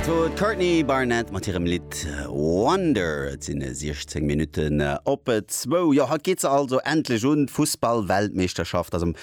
Dat wor d'Courtney Barnett mat hirem Lidd Wonder. Et sinn 16 Minutten op zwou. Jo, haut geet se also endlech un, d'Fussball-Weltmeeschterschaft. Ass am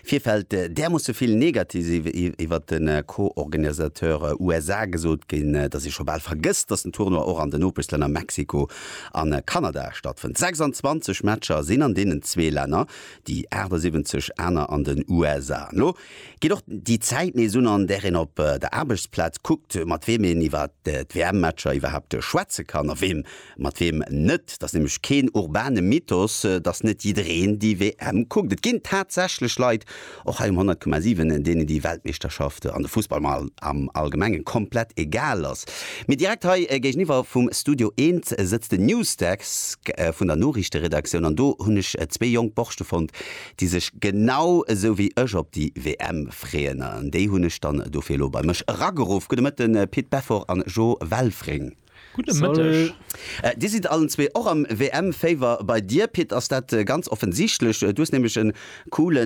Virfeld därmoosse vill Negatives iwwert de Co-Organisateur USA gesot ginn, dass ee scho bal vergësst, dass den Tournoi och an den Nopeschlänner Mexiko a Kanada stattfënnt. 26 Matcher sinn an deenen zwee Länner, déi 78 aner an den USA. Elo Geet och déi Zäit nees un, an där een op der Aarbechtsplaz kuckt, mat weem een iwwer d'WM-Matcher iwwerhaapt schwätze kann a wee mat weem net. Et ass nämlech keen urbane Mythos, datt net jiddereen déi WM kuckt. Et ginn tatsächlech Leit, och hei um 100,7, deenen déi Weltmeeschterschaft an de Fussball am Allgemengen komplett egal ass. Mee direkt hei géigeniwwer vum Studio Eent sëtzt den Newsdesk vun der Noriichteredaktioun an do hunn ech zwee jonk Borschte fonnt, déi sech genau esou wéi ech op déi WM freeën an déi hunn ech dann dofir elo bei mech erageruff. Gudde Mëtten Pit Beffort an Jo Welfring. Gudde Mëtteg. Dir sidd allen zwee och am WM-Féiwer. Bei dir Pit ass dat ganz offensichtlech, du hues nämlech e coole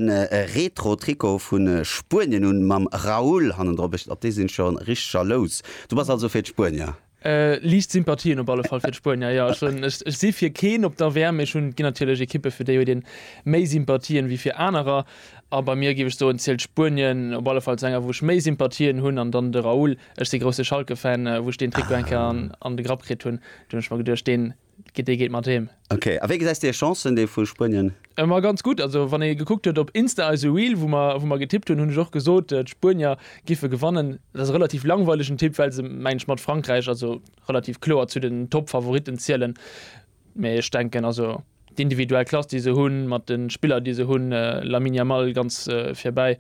Retro Trikot vu Spuenien un mam Raúl hannendrop. Op dee sinn ech scho richteg jalous. Du bass also fir d'Spuenier? Liicht Sympathien op alle Fall fir d'Spuenier. Jo, ech hunn, ech si fir keen op der WM, mee ech hunn, ginn natierlech Ekippe fir déi huet een méi Sympathien wéi fir anerer. A bei mir, géif ech soen, zielt Spuenien op alle Fall zu enger wou ech méi Sympathien hunn. An dann de Raúl, ech si grousse Schalke-Fan, wou ech deen Trikot eng Kéier an de Grapp kritt hunn, do hunn ech mer geduecht, deen dee geet mat heem. Ok, a wéi gesäis de hir Chancen, dee vu Spuenien? Ëmmer ganz gutt. Also wann ee gekuckt huet op Insta eise Reel, wou mer wou mer getippt hunn, hunn ech och gesot, d'Spuenier giffe gewannen. Dat ass e relativ langweilegen Tipp, well se, mengen ech, mat Frankräich also relativ kloer zu den Top-Favoritten zielen. Mee ech denken also d'individuell Klass, déi se hunn, mat de Spiller, déi se hunn, Lamine Yamal ganz virbäi,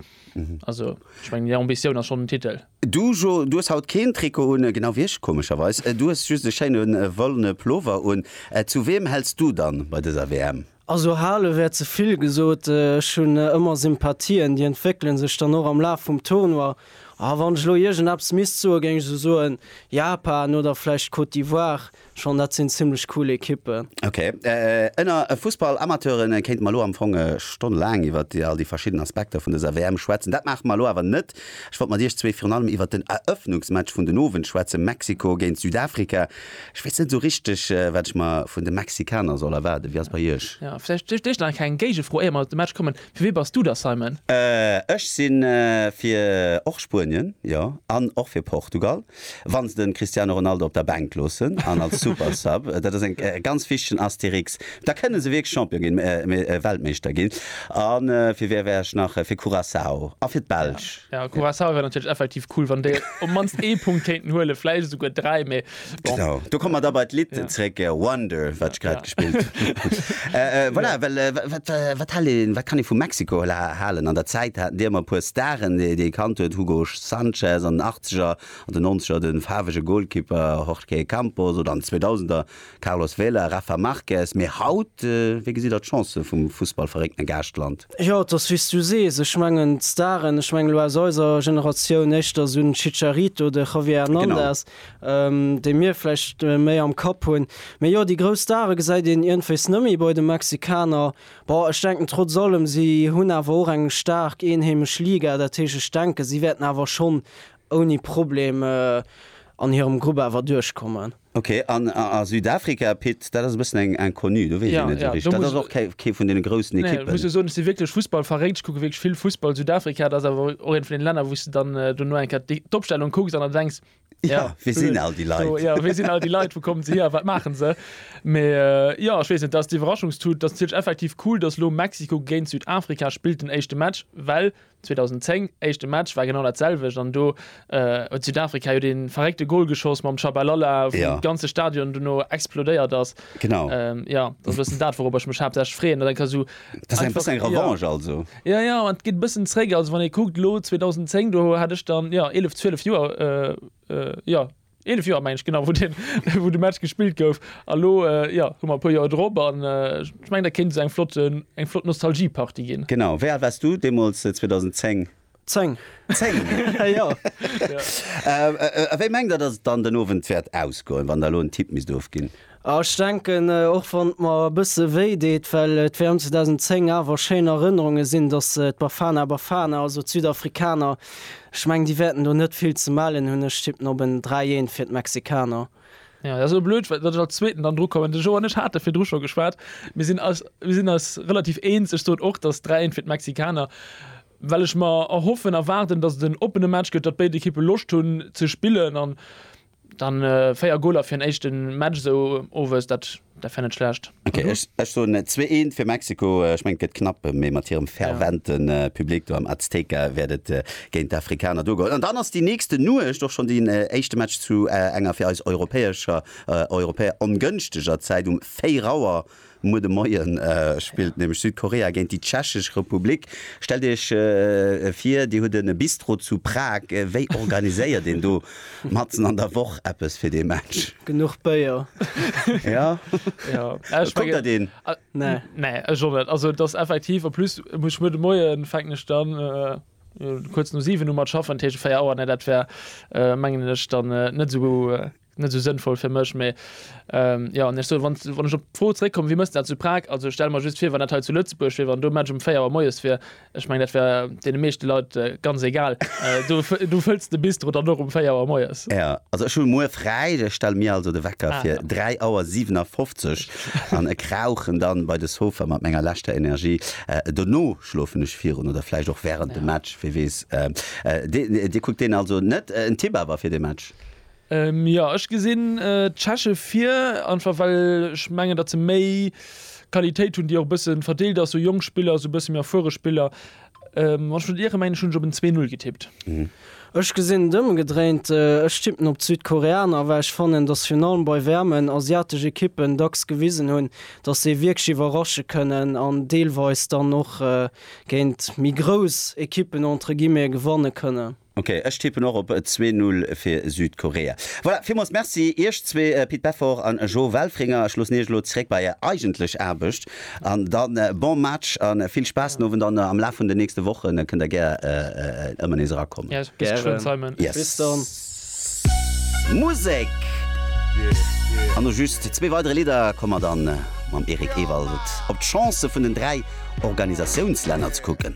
also ech mengen hir Ambitioun ass schonn den Titel. Du Jo, du hues haut keen Trikot un, genau wéi ech, komescherweis. Du hues just e schéine wollene Pullover un. Zu weem häls du dann bei dëser WM? Also hale wär ze vill gesot. Ech hunn ëmmer Sympathien, déi entwéckele sech dann och am Laf vum Tournoi. A wann ech elo iergendeppes misst soen, géing ech esou soen, Japan oder vläicht d'Côte d'Ivoire. Schonn dat sinn zimmlech cool Ekippen. Ok, ënner Fussball-Amateuren kéinte mer elo am Fong stonnelaang iwwer all déi verschidden Aspekter vun dëser WM schwätzen. Dat maache mer elo awer net. Ech wollt mat iech zwee virun allem iwwer den Erëffnungsmatch vun den Owend schwätzen, Mexiko géint Südafrika. Ech weess net esou richteg, wat ech mer vun de Mexikaner soll erwaarden. Wéi ass bei iech? Jo, vläicht duerch dech nach eng kleng Géigefro, éier mer op de Match kommen. Fir wee bass du da, Simon? Ech si fir och Spuenien, jo, an och fir Portugal. Wann se den Cristiano Ronaldo op der Bänk loossen an als Super Sub, dat ass eng ganz wichtegen Asterix, da kënne se wierklech Champion ginn, mee Weltmeeschter ginn. A fir wee wär ech nach? Fir Curaçao a fir d'Belsch. Jo, Curaçao wär natierlech effektiv cool, wann déi op mannst ee Punkt kéinten huelen, vläicht esouguer dräi, mee bon. Genau, do komme mer da bei d'Lidd zréck, Wonder, wat ech grad gespillt hunn. Voilà, well wat, wat hält een, wat kann ee vu Mexiko halen? An der Zäit haten déi ëmmer e puer Staren, déi ee kannt huet, Hugo Sanchez, an den Achtzeger an den Nonzeger de faarwege Golkipper Jorge Campos oder an den Zweedausender Carlos Vela, Rafa Marquez. Mee haut, wéi gesitt der d'Chancë vum Fussballverréckten Gaaschtland? Jo, et ass wéi s du sees. Ech mengen d'Staren, ech mengen elo aus eiser Generatioun éischter esou den Chicharito, de Javier Hernandez, déi mir vläicht méi am Kapp hunn. Mee jo, déi grouss Stare gesäit een iergendwéis net méi bei de Mexikaner. Bon, ech denken trotz allem, si hunn awer och eng staark eenheemesch Liga, dat heescht, ech denken, si wäerten awer schonn ouni Problem an hirem Grupp awer duerchkommen. Ok, an a Südafrika, Pit, dat ass e bëssen eng Inconnue, do weess een net esou richteg. Dat ass och kee vun deene groussen Ekippen. Nee, muss jo soen, ech si wierklech Fussballverréckt, ech kucke wierklech vill Fussball. Südafrika, dat ass awer och eent vun deene Länner, wou s de dann dono eng Kéier d'Opstellung kucks an der denks, Ja, wie sinn all déi Leit? So, ja, wie sinn all déi Leit? Wou kommen se hier? Wat maachen se? Mä äh, ja, ech weess net, dat ass d'Iwwerraschungstut. Dat ass natierlech effektiv cool, dass elo Mexiko géint Südafrika spillt den éischte Match, well 2010 éischte Match war genau datselwecht an do äh, huet Südafrika jo dee verréckte Gol geschoss mam Tshabalala, wou ja. de ganze Stadion duerno explodéiert ass. Genau. Ähm, ja, dat ass bëssen dat, worobber ech mech haaptsächlech freeën, dat eng ka so Dat ass eng bëssen eng Revanche also? Jo, jo, et geet e bëssen zréck. Also wann ee kuckt elo 2010, do hat ech dann, jo, eelef, zwielef Joer, jo, eelef Joer mengen ech genau, wou deen, wou de Match gespillt gouf. A elo, jo, hu mer e puer Joer drop an ech mengen, dat kéint esou eng flott, eng flott Nostalgie-Partie ginn. Genau. Wéi al waars du deemools 2010? 10. 10? Ja, ja. A wéi mengt Der, datt et dann den Owend wäert ausgoen, wann Der elo en Tipp misst ofginn? Ah, ech denken, och wann et mer e bësse wéi deet, well et wären 2010 awer schéin Erënnerunge sinn, datt d'Bafana Bafana, also d'Südafrikaner, ech mengen, déi wäerten do net vill ze mellen hunn. Ech tippen op en 3, 1 fir d'Mexikaner. Ja, dat ass elo blöd, well datt ech als Zweeten dann drukommen. De Jo an ech hate virdru scho geschwat, mir sinn eis, mir sinn eis relativ eens. Ech sot och, datt 3, 1 fir d'Mexikaner well ech mer erhoffen, erwaarden, datt et en oppene Match gëtt, datt béid Ekippe Loscht hunn ze spillen an da 4 Goaler fir en éischte Match esou owes, dat wär net schlecht. Ok, ech soen zwee eent fir Mexiko. Ech mengen et gëtt knapp, mee mat hirem fervente Public do am Azteca wäert et géint d'Afrikaner duergoen. An dann ass déi nächste Nuecht och schonn deen éischte Match zu enger fir eis Europäescher, Europäer ongënschteger Zäit, um 4 Auer. Muer de Moien spillt nämlech Südkorea géint déi Tschechesch Republik. Stellt Iech vir, Dir hutt e Bistro zu Prag. Wéi organiséiert een do matzen an der Woch eppes fir dee Match? Genuch Béier. Jo, et konnt dat een. Nee, ech och net. Also et ass effektiv, en plus muss ech muer de Moien, fänken ech dann kuerz no 7 u mat schaffen, dat heescht 4 Auer, nee dat wär mengen ech dann net esou. net esou sënnvoll fir mech, mee jo, an ech soen, wann, wann ech op d'Fro zréckkommen, wéi mëss de dat zu Prag? Also ech stelle mer just vir, wann dat hei zu Lëtzebuerg wier, wann do e Match um 4 Auer moies wier, ech mengen, dat wär deene meeschte Leit ganz egal, do, do fëlls de Bistro dann och um 4 Auer moies. Jo, also ech hu muer fräi, ech stelle mir also de Wecker fir 3 Auer 57 an e krauchen da bei de Sofa mat menger leschter Energie. Dono schlofen ech virun oder vläicht och wärend dem Match, wie weess. Dir kuckt deen also net. En Tipp awer fir de Match? Jo, ech gesinn d'Tscheche vir, einfach well ech mengen, datt se méi Qualitéit hunn, déi och e bësse verdeelt ass, esou jonk Spiller, esou e bësse méi erfuere Spiller. Wann ech net iere mengen, ech hunn ech op en Zwee-Null getippt. Ech gesinn et ëmgedréint, ech tippen op d'Südkoreaner, well ech fannen, datt se virun allem bei waarmen asiatesch Ekippen dacks gewisen hunn, datt se wierklech iwwerrasche kënnen an deelweis dann och géint méi grouss Ekippen entre guillemets gewanne kënnen. Ok, ech tippen och op e zwee Null fir Südkorea. Voilà, villmools Merci Iech zwee, Pit Beffort an Jo Welfringer. Ech loossen Iech elo zeréck bei Är eigentlech Aarbecht an da bon Match a vill Spaass den Owend an am Laf vun den nächste Wochen kënnt Der gär ëmmer nees erakommen. Musek! An no just zwee weidere Lidder komme mer da mam Eric Ewald op d'Chancë vun den dräi Organisatiounslänner ze kucken.